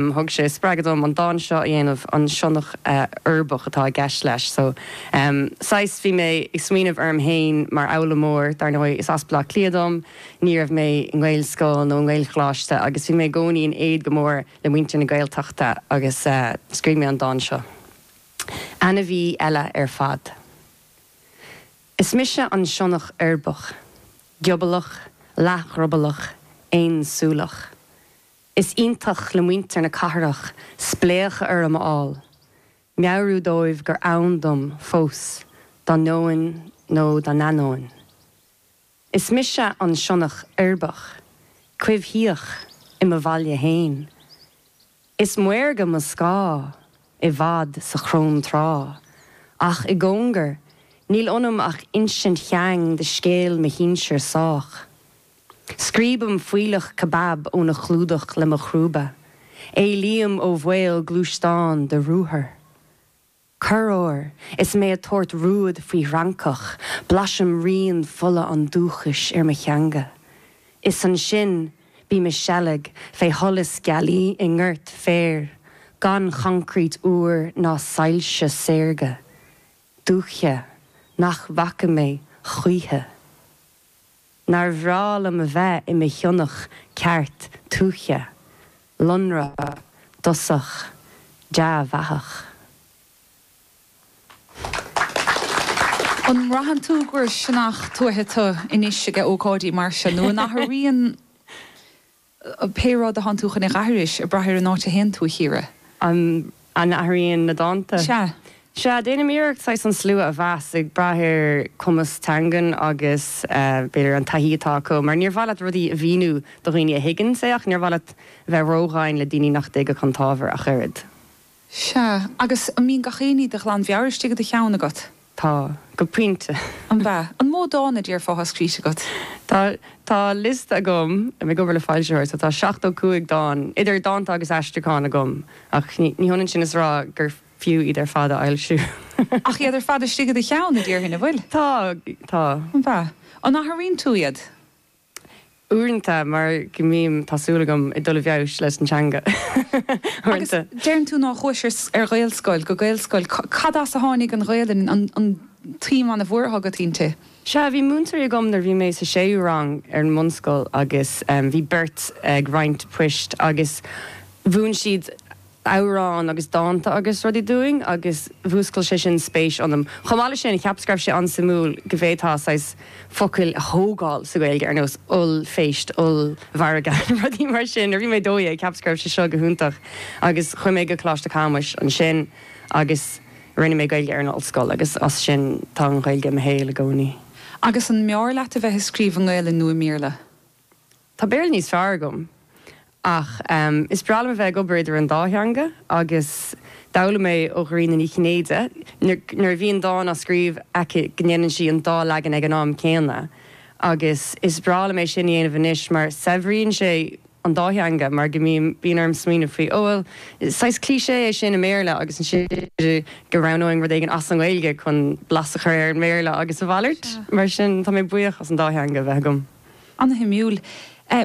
Thug sé spreagadh dom an dán seo a dhéanamh, an sionnach uirbeach atá i gceist leis. So, em, saghas, bhí mé ag smaoineamh orm fhéin mar fhoghlaimeoir, dar ndóigh is as Baile Átha Cliath dom, ní raibh mé i nGaelscoil nó i nGaelcholáiste agus bhí mé i gcónaí in éad go mór le muintir na Gaeltachta agus, eh, scríobh mé an dán seo. Ainmhí eile ar fad. Is mise an sionnach uirbeach, giobalach, leathdhrioballach, aonsúileach. Is iontach le muintir na cathrach spléachadh orm a fháil, meabhrú dóibh gur ann dom fós dá ndeoin nó dá n-ainneoin. Is mise an sionnach uirbeach coimhthíoch i mo bhaile féin. Is maorga mo scáth i bhfad sa chróntráth, ach i gcóngar níl ionam ach insint sheang de scéal mo shinsir sách. Scríobaim fuílleach cebab óna chlúdach le mo chrúba. Éalaím ó bhaol gluaisteán de ruathar. Corruair, is mé ag tabhairt rúid faoi fhrancach, blaisim rian fola an dúchais ar mo theanga. Is ansin, bím ag seilg fé sholas gealaí i ngort féir, gan choncrét úr ná soilse saorga. Dúiche nach bhfaca mé choíche. Nár bhreá liom a bheith i mo shionnach ceart tuaithe, lonrach, dosach, dea-dhathach. An mbraitheann tú gur sionnach tuaithe tú anois ag ócáidí mar seo nó an athraíonn. Pé rud atánn tú chun é dh'aithris, ag brath ar an áit a théann tú, a Chiara. An n-athraíonn na dánta? Sea. Sea, déanaim iarracht saghas an slua a mheas, ag brath ar chumas teangan agus, b'fhéidir, an taithí atá acu. Mar níor mhaith leat rudaí a mhíniú do dhaoine a thuigeanns é ach níor mhaith leat bheith ródhomhain le daoine nach dtuigfeadh an t-ábhar ach oiread. Sea, agus an mbíonn gach aon ní de ghlan mheabhair istigh i do cheann agat? Tá, go pointe. An ea? An mó dán a déarfá atá scríte agat? Tá, tá liosta agam, táim ag obair le foilsitheoir, so tá seachtó cúig dán, idir dhánta agus aistriúcháin, agam, ach ní hionann sin is a rá gur fiú iad ar fad a fhoilsiú. Ach iad ar fad istigh i do cheann, a déarfainn, an bhfuil? Tá, tá. An ea? An athraíonn tú iad? uaireanta mar go mbím, tá súil agam, ag dul i bhfeabhas leis an teanga Agus uaireanta. deireann tú nár chuais ar, ar Ghaelscoil, go Gaelscoil. Cad as a tháinig an Ghaelainn, an, an tsuim ana-mhuar atá agat inti? Sea, bhí múinteoirí agam nuair a bhí mé sa séú rang ar an mbunscoil agus bhí beirt ag roinnt poist agus mhúin siad, amhráin agus dánta agus rudaí dúinn agus mhúscail sé sin spéis ionam. Chomh maith leis sin, cheapas go raibh sé an-suimiúil go bhféadfá saghas focail a thógáil sa Ghaeilge ar nós ollphéist, ollmhargadh, rudaí mar sin. Nuair a bhí mé 12, cheapas go raibh sé seo go hiontach agus chuaigh mé go Coláiste Chamuis ansin agus rinne mé Gaeilge ar an ollscoil agus as sin tá an Ghaeilge i mo shaol i gcónaí. Agus an mb'fhearr leat a bheith ag scríobh i nGaelainn nó i mBéarla? Tá Béarla níos fearr agam ach is breá liom a bheith ag obair idir an dá theanga agus d'fhoghlaim mé ó Dhairena Ní Chinnéide nuair a bhíonn dán á scríobh aici go ndéanann sí an dá leagan ag an am céanna agus is breá liom é sin a dhéanamh anois mar saibhríonn sé an dá theanga mar go mbím, bíonn orm smaoineamh faoi, ó bhuel, saghas cliché é sin i mBéarla agus ansin go roghnóinn rud éigin as an nGaeilge chun blas a chur ar an mBéarla agus a mhalairt. Mar sin, tá mé buíoch as an dá theanga a bheith agam. An-shuimiúil.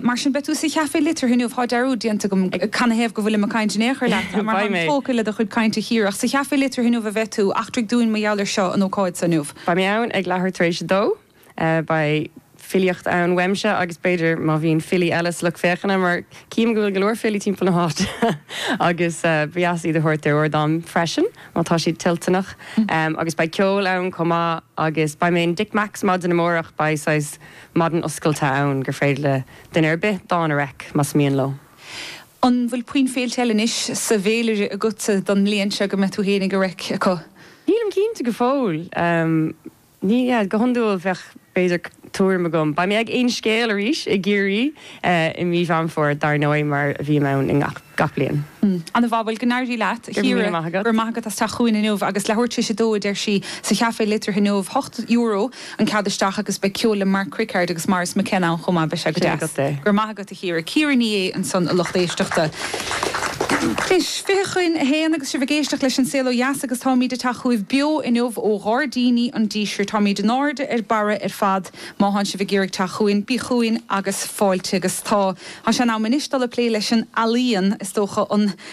Mar sin, beidh tú sa Chafé Liteartha inniu. Tá dearúd déanta agam, canathaobh go bhfuilim ag caint in aon chor leat, mar táim tógtha le do chuid cainte, a Chiara. Sa Chafé Liteartha inniu a bheidh tú. Eachtraigh dúinn mar gheall air seo, an ócáid so inniu. Beidh mé ann ag leathuair tar éis a dó. Beidh filíocht ann uaimse agus b'fhéidir má bhíonn filí eile sa lucht féachana, mar cím go bhfuil go leor filí timpeall na háite agus ba dheas iad a thabhairt ar ardán freisin, má tá siad toilteanach. Agus beidh ceol ann chomh maith agus beidh mé in Dick Mac's maidin amárach. Beidh saghas Maidin oscailte ann gur féidir le duine ar bith dán a reic, más mian leo. An bhfuil puinn féilte eile anois sa bhféilire agatsa don mbliain seo go mbeidh tú fhéinig ag reic acu? Nílim cinnte go fóill. Ní, go hiondúil bheadh b'fhéidir tuairim agam. Beidh mé ag Aon Scéal arís i gCiarraí i mí Mheán Fómhair dar ndóigh mar a bhím ann i ngach. gach bliain. Ana mhaith. Bhuel, go n-éirí leat, a Chiara. Go raibh míle maith agat. Go raibh maith agat as teacht chugainn inniu agus leathuair tar éis a dó, a deir sí, sa Chafé Liteartha inniu. Hocht euro an cead isteach agus beidh ceol le Mark Crickard agus Maurice McKenna ann chomh maith. Beidh sé go deas. Sin agat é. Go raibh maith agat, a Chiara. Ciara Ní É ansan, a lucht éisteachta. Anois, fiche chun a haon agus sibh ag éisteacht leis An Saol Ó Dheas agus táimid ag teacht chugaibh beo inniu ó Ghairdíní an Dísirt. Táimid in airde ar barra ar fad. Má thánn sibh ag iarraidh teacht chugainn, bíg' chugainn agus fáilte agus tá. Tá sé in am anois dul ag plé leis an ealaíon, is dócha, an.